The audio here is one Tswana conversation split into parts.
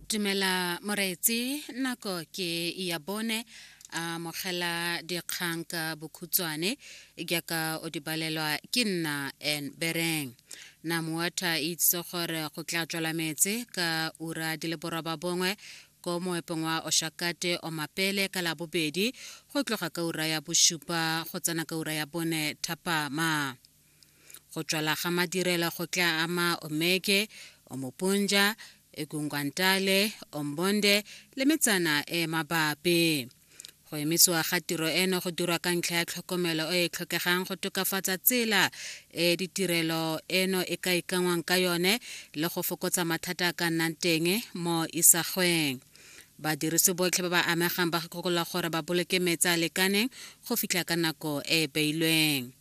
dumela moreetsi nako ke ya bone a mogela dikgang ka bokhutshwane jaaka o di balelwa ke nna and bereng na moata e itse gore go tla tswala metse ka ura di le boroba bongwe ko moepong wa oshakate o mapele ka labobedi go tloga ka ura ya bosupa go tsena ka ura ya bone thapama Go tswala ga madirelo go tla ama Omeke, Omoponja, Egungwantale, Ombonde le metsana e e mabapi. Go emisiwa ga tiro eno go dirwa ka ntlha ya tlhokomelo e e tlhokegang go tokafatsa tsela e ditirelo eno e ka ikanngwang ka yone le go fokotsa mathata a ka nnang teng mo isagweng. Badirisi botlhe ba ba amegang ba gakolola gore ba boloke metsi a lekaneng go fitlha ka nako e e beilweng.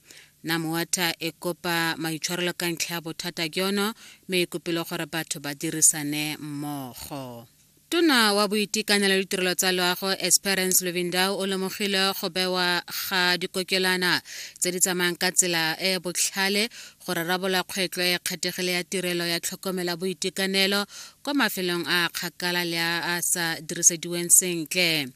na moata e kopa maitshwarelo ka ntlha ya bothata jono mme e kopile gore batho ba dirisane mmogo tona wa boitekanelo le ditirelo tsa loago esperance lovindao o lemogile go bewa ga dikokelana tse di tsamayang ka tsela e e botlhale go rarabola kgwetlho e kgethegile ya tirelo ya tlhokomela boitekanelo kwa mafelong a kgakala le a a sa dirisediweng sentle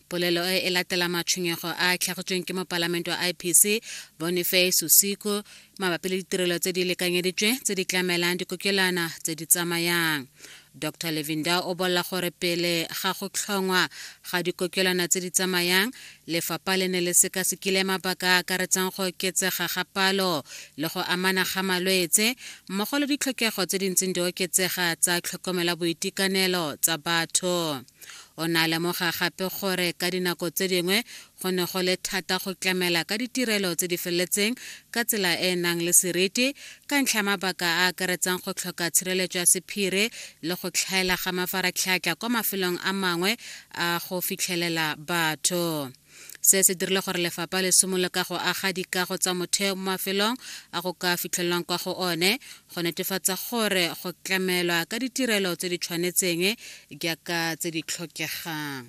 Polelo e e latela matshwenyego a a tlhagitsweng ke mopalamente wa IPC Boniface Sosiko mabapi le ditirelo tse di lekanyeditswe tse di tlamelang dikokelwana tse di tsamayang. Dr Levinda o bolela gore pele ga go tlhongwa ga dikokelwana tse di tsamayang, lefapha le ne le sekasekile mabaka a akaretsang go oketsega ga palo le go amana ga malwetse mmogo le ditlhokego tse di ntseng di oketsega tsa tlhokomela boitekanelo tsa batho. O ne a lemoga gape gore ka dinako tse dingwe go ne go le thata go tlamela ka ditirelo tse di feletseng ka tsela e e nang le seriti ka ntlha ya mabaka a a akaretsang go tlhoka tshireletso ya sephiri le go tlhaela ga mafaratlhatlha kwa mafelong a mangwe a go fitlhelela batho. se se dirile gore lefapha le simolole ka go aga dikago tsa motheo mo mafelong a go ka fitlhelwang kwa go one go netefatsa gore go tlamelwa ka ditirelo tse di tshwanetseng jaaka tse di tlhokegang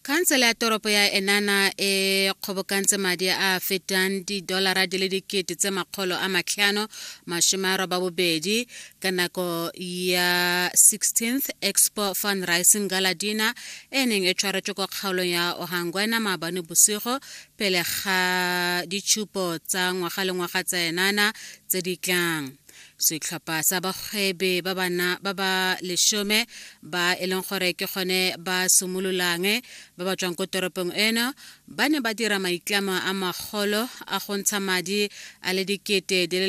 khansele ya toropo ya enana e kgobokantse madi a a fetang didolara di le dikete tse makgolo a matlhano masome a roba bobedi ka nako ya 16th expo fundraising galadina e neng e tshwaretswe kwa kgaolong ya ohangwena maabane bosigo pele ga ditšhupo tsa ngwaga le ngwaga tsa enana tse di tlang setlhopha sa bagwebe ba bana ba ba lesome ba e leng gore ke gone ba simololang ba ba tswang ko toropong eno ba ne ba dira maitlamo a magolo a go ntsha madi a le dikete di le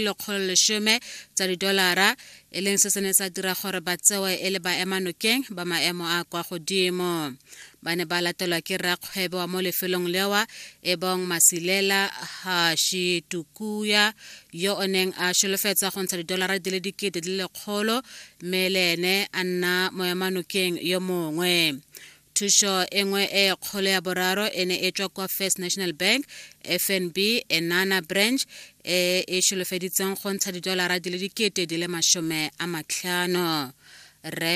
lekgolo lesome tsa didolara e leng se se ne sa dira gore ba tsewe e le baemanokeng ba maemo a kwa godimo ba ne ba latelwa ke rakgwebo wa mo lefelong lewa e bong masilela hashi tukuya yo o neng a solofetsa go ntsha didolara di le dikete di le lekgolo mme le ene a nna moemanokeng yo mongwe thušo e nngwe e kgolo ya boraro e ne e tswa kwa first national bank fnb enana branch e e šolofeditseng go ntsha didolara di le dikete di le masome a matlhano re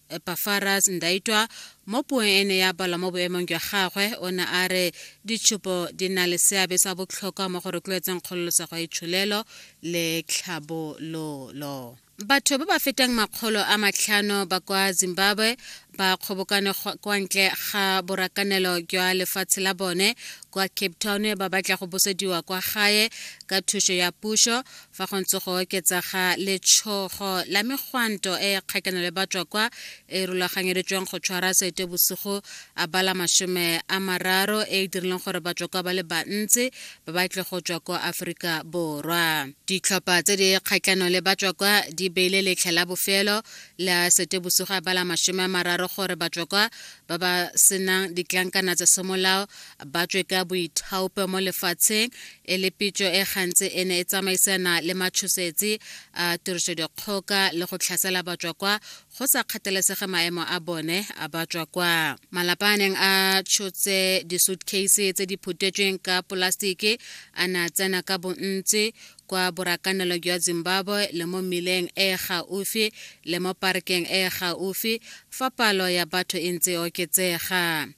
epafaras ndaitwa mo puong e ne ya balwa mo boemong jwa gagwe o ne a re ditshupo di na le seabe sa botlhokwa mo go rotloetseng kgololosego ya itsholelo le tlhabololo Batho ba ba fetang makgolo a matlhano ba kwa Zimbabwe ba kgobokane kwa ntle ga borakanelo jwa lefatshe la bone kwa Cape Town ba batla go bosediwa kwa gae ka thuso ya puso fa go ntse go oketsa ga letshogo la megwanto e e kgatlhano le batswa kwa e rulaganyeditsweng go tshwara sete bosigo a bala masome a mararo e e dirileng gore batswa kwa ba le bantsi ba ba tle go tswa kwa aforika borwa ditlhopha tse di kgatlhano le batswa kwa di beile letlha la bofelo la setebosugo a bala masome a mararo gore batswa kwa ba ba senang ditlankana tsa semolao ba tswe ka boithaope mo lefatsheng e le pitso e gantsi e ne e tsamaisana le matshosetsi a tirisodikgoka le go tlhasela batswa kwa go sa kgathalesege maemo a bone a ba tswa kwa malapa a neng a tshotse disuitcase tse di phutetsweng ka polasitiki a ne a tsena ka bontsi kwa borakanelo jwa zimbabwe le mo mmileng e e gaufi le mo parekeng e e gaufi fa palo ya batho e ntse e oketsega